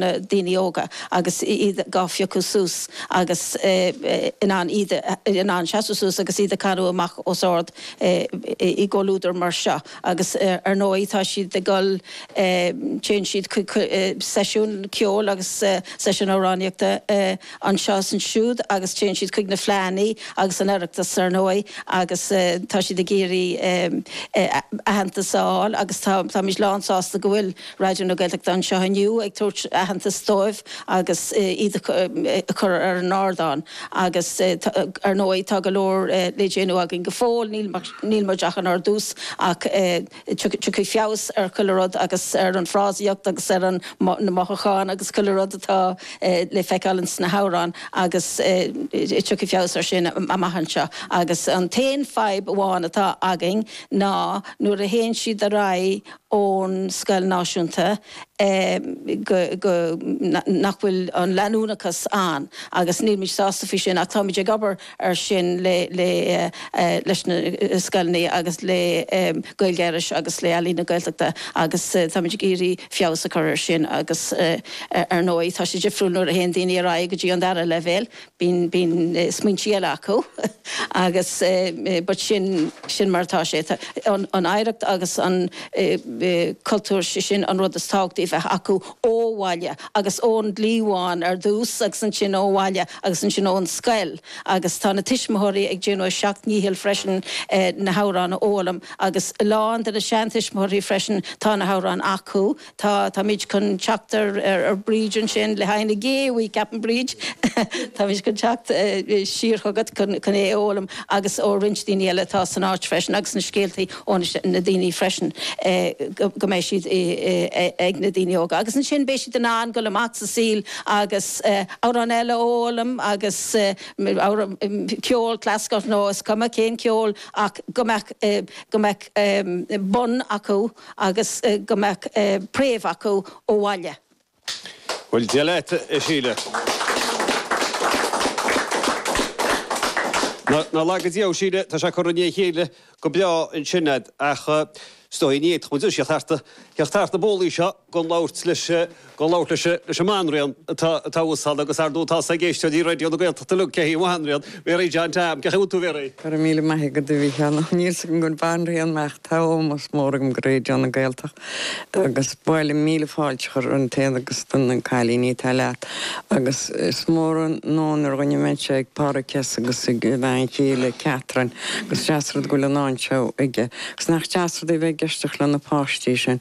na daoine óga agus iad gá phiocadh suas agus in ann iad in ann seasamh suas agus iad á gcanadh amach os ard i gcomhluadar mar seo agus ar ndóigh tá siad ag dul téann siad chuig seisiún ceoil agus seisiún amhránaíochta anseo is ansiúd agus téann siad chuig na fleadhannaí agus an Oireachtas ar ndóigh agus tá siad ag iarraidh aitheantas a fháil agus táimid lán sásta go bhfuil Raidió na Gaeltachta anseo inniu ag tabhairt aitheantas dóibh agus iad a chur ar an ardán agus ar ndóigh tá go leor le déanamh againn go fóill, níl muid ach inár dtús ach tiocfaidh feabhas ar chuile rud agus ar an fhrásaíocht agus ar na mothúcháin agus chuile rud atá le feiceáil ins na hamhráin agus tiocfaidh feabhas ar sin amach anseo agus an t-aon fadhb amháin atá againn ná nuair a théann siad ar aghaidh ón scoil náisiúnta go go nach bhfuil an leanúnachas ann agus nílimid sásta faoi sin ach táimid ag obair ar sin le le leis na scoileanna agus le Gaeilge Iorrais agus le Ealaín na Gaeltachta agus táimid ag iarraidh feabhas a chur ar sin agus ar ndóigh tá sé difriúil nuair a théann daoine ar aghaidh go dtí an dara leibhéal bíonn smaointe eile acu agus but is é sin mar atá sé an oidhreacht agus an cultúr sé sin an rud is tábhachtaí a bheith acu ó bhaile agus ón gcliabhán ar dtús agus ansin ó bhaile agus ansin ón scoil agus tá na tuismitheoirí ag déanamh a seacht ndícheall freisin na hamhráin a fhoghlaim agus a lán de na seantuismitheoirí freisin tá na hamhráin acu Tá, táimid chun teacht ar, ar, ar Bridge ansin le haghaidh na gé, ceapaim Bridge, táimid chun teacht siar chugat chun, chun é a fhoghlaim agus ó roinnt daoine eile atá san áit freisin agus na scéaltaí ó na, na daoine freisin go, go mbeidh siad i, ag na daoine óga agus ansin beidh siad in ann dul amach sa saol agus amhrán eile a fhoghlaim agus amhrán, ceol clasaiceach nó is cuma cén ceol ach go mbeadh, go mbeadh bun acu. agus go mbeadh préamh acu ó bhaile. Bhuel, Dia leat, a Shíle. Nár laga Dia thú, Síle, tá sé curtha i ndiaidh a chéile go breá ansin fhad, ach is dóigh, ní fhéadfadh muid a theacht thart na bólaí seo gan labhairt leis. Ag labhairt leis an mbanríon atá thuas ann agus ardmheas ag éisteoirí Raidió na Gaeltachta Luke Cahey, Bhanríon Mary John Tam, cad a bhfuil tú a bheith réidh? Go raibh míle maith agat, a Mhicheál. Níl 's agam gur banríon mé ach tá ómós mór agam do Raidió na Gaeltachta agus ba mhaith liom míle fáilte a chur romhat féin agus na cailíní atá leat agus is mór an onóir dhuinn a bheith anseo ag Pádraig S. agus ag a bhean chéile Catherine agus deas rud go bhfuil an áit seo aige agus nach deas rud é bheith ag éisteacht le na páistí sin.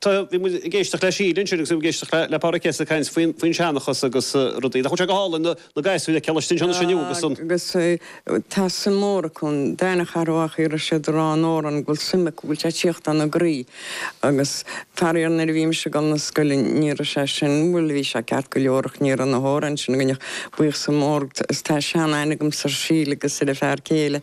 Tá, bhí muid ag éisteacht le Síle ansin agus bhí muid ag éisteacht le Pádraig Kes ag caint faoin, faoin seanchas agus rudaí. Nach bhfuil sé go hálainn na, na gasúir a chloisteáil anseo anois inniu agus an. Agus tá suim mhór acu, an dá na Charrabhach a raibh siad a rá an amhráin go bhfuil suim acu, go bhfuil sé ag tíocht ina gcroí. Agus faraor nuair a bhí mise ag dul na scoile ní raibh sé sin, bhuel bhí sé ceart go leor ach ní raibh na hamhráin sin againn ach buíochas mór, tá sean aithne agamsa ar Shíle agus ar a fear chéile,